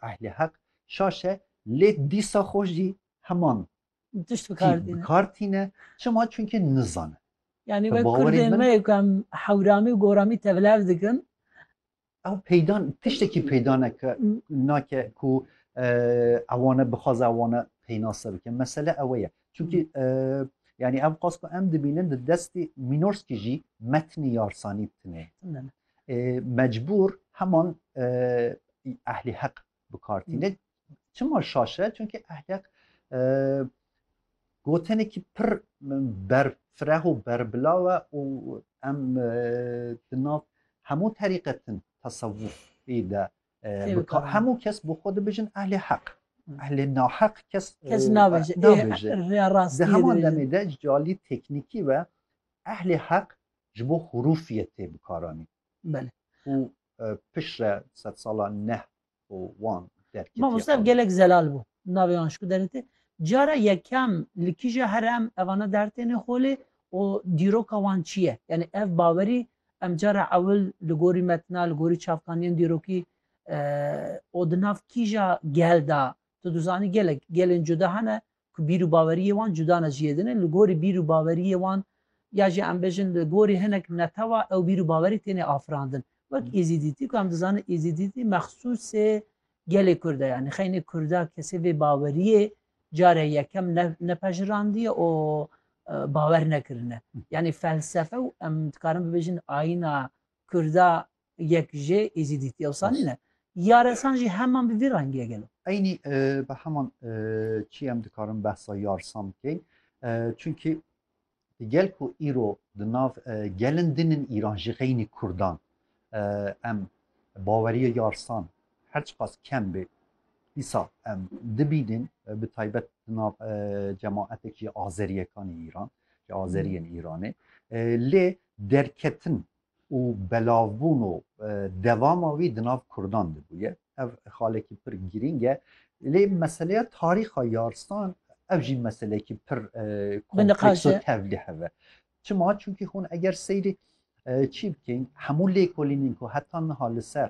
ehlê heq şaş e lê dîsa xwe jî heman tişt bikar tîne çima çunke nizane. Yanî wek kurdên me ku em hewramî û goramî tevlev dikin. Ew peyda tiştekî peyda neke nake ku ewane bixwaze ewane peynase bike. Mesele ew ye. Çunkî yanî ev qas ku em dibînin di destê mînorskî jî metnî yarsanî tune. Mecbûr heman ehlî heq bi kar tîne. Çima şaş e? Çunkî ehlî heq gotenekî pir berfireh û berbilaw e û em di nav hemû terîqetin tesewufî de hemû kes bi xwe dibijin ehlî heq. Ehlê naheq kes kes nabêje. Di heman demê de calî teknîkî ve ehlê heq Ji bo hurûfiyê tê bikaranîn. Belê. Û pişre sed sala neh û wan derketiye. Mamoste ev gelek zelal bû. Navê wan ji ku derketiye. Cara yekem li kîja here em evana dertêne xwe lê û dîroka wan çi ye? Yanî ev bawerî em cara ewil li gorî metna, li gorî çavkaniyên dîrokî û di nav kîja gel de tu dizanî gelek gelên cuda hene ku bîr û baweriyê wan cuda ne ji yê din e, li gorî bîr û baweriyê wan ya jî em bêjin li gorî hinek netewa ew bîr û bawerî têne afirandin. Wek Êzîdîtî ku em dizanin Êzîdîtî mexsûsê gelê Kurd e yanî xeynê Kurda kesê vê baweriyê carê yekem ne nepejirandiye û bawer nekirine. Yanî felsefe û em dikarin bibêjin ayîna Kurda Yek jê Êzîdî tiyewsa nîne. Yaresan jî heman bi vî rengîye gelo. Eynî bi heman çî em dikarin behsa yarsan bikeyn. Çunkî di gel ku îro di nav gelin din in Îran jî xeynî Kurdan em baweriye yarsan her çiqas kem bê dîsa em dibînin bi taybet di nav cemaetekî azeriyekanî Îran azeriyên Îranê lê derketin û belavbûn û devama wî di nav Kurdan de bûye. Ev xalekî pir girîng e. Lê meseleya tarîxa Yarstan ev jî meselekî pir kompleks û tevlî heve. Çima çunkî hûn eger seyrê çî bikên hemû lêkolînên ku heta niha li ser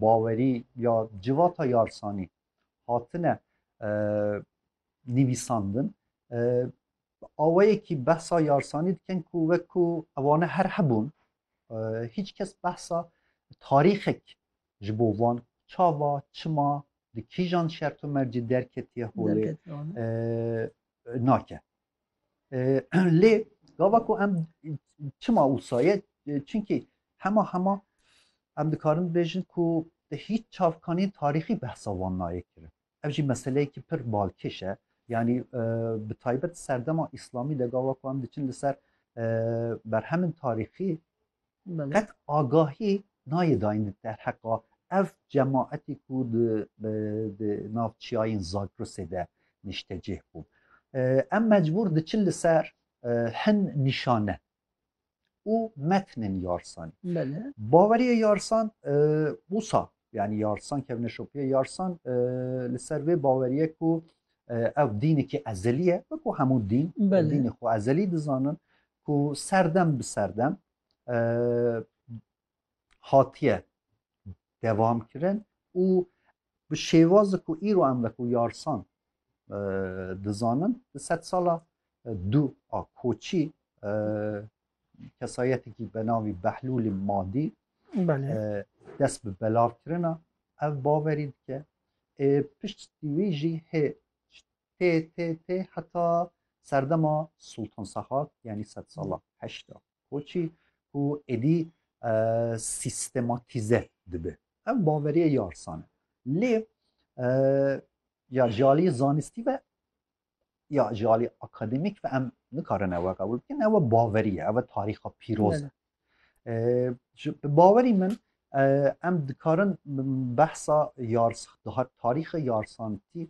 bawerî ya civata yarsanî hatine nivîsandin awayekî behsa yarsanî dikin ku wekû ewane her hebûn hiç kes behsa tarîxek ji bo van çava çima di kîjan şerto mercî derketiye holê nake lê gava ku em çima wîsaye çunkî hema hema em dikarin bêjin ku di hiç çavkanî tarîxî behsa van nayê kirin Ev jî meseleyekî pir balkêş e. Yanî bi taybet serdema îslamî de gava ku em diçin li ser berhemên tarîxî qet agahî nayê dayîn derheqa ev cemaetî ku di nav çiyayên Zagrosê de nîştecih bû. Em mecbûr diçin li ser hin nîşane. û metnên yarsan. Baweriya yarsan wisa yani yarsan kevne şopiya yarsan li ser vê baweriye ku ew dînekî ezelî ye wekû hemû dîn dînê xwe ezelî dizanin ku serdem bi serdem hatiye devam kirin û bi şêwazê ku îro em veku yarsan e, dizanin di sed sala e, du a koçî e, kesayetekî be navî Behlûlî Madî dest bi belav kirina ev baverî dike ê pişt wî jî hê tê tê tê heta serdema Sultan Sehak yanî sed sala heşta Koçî ku êdî sîstematîze dibe. Ev baveriye yarsan e. Lê ya ji aliyê zanistî ve ya ji aliyê akademîk ve em nikarin ewe qebûl bikin. Ewe baveriye, ewe tarîxa pîroz e. Bi bawerî min em dikarin behsa yarsan, tarîxa yarsantî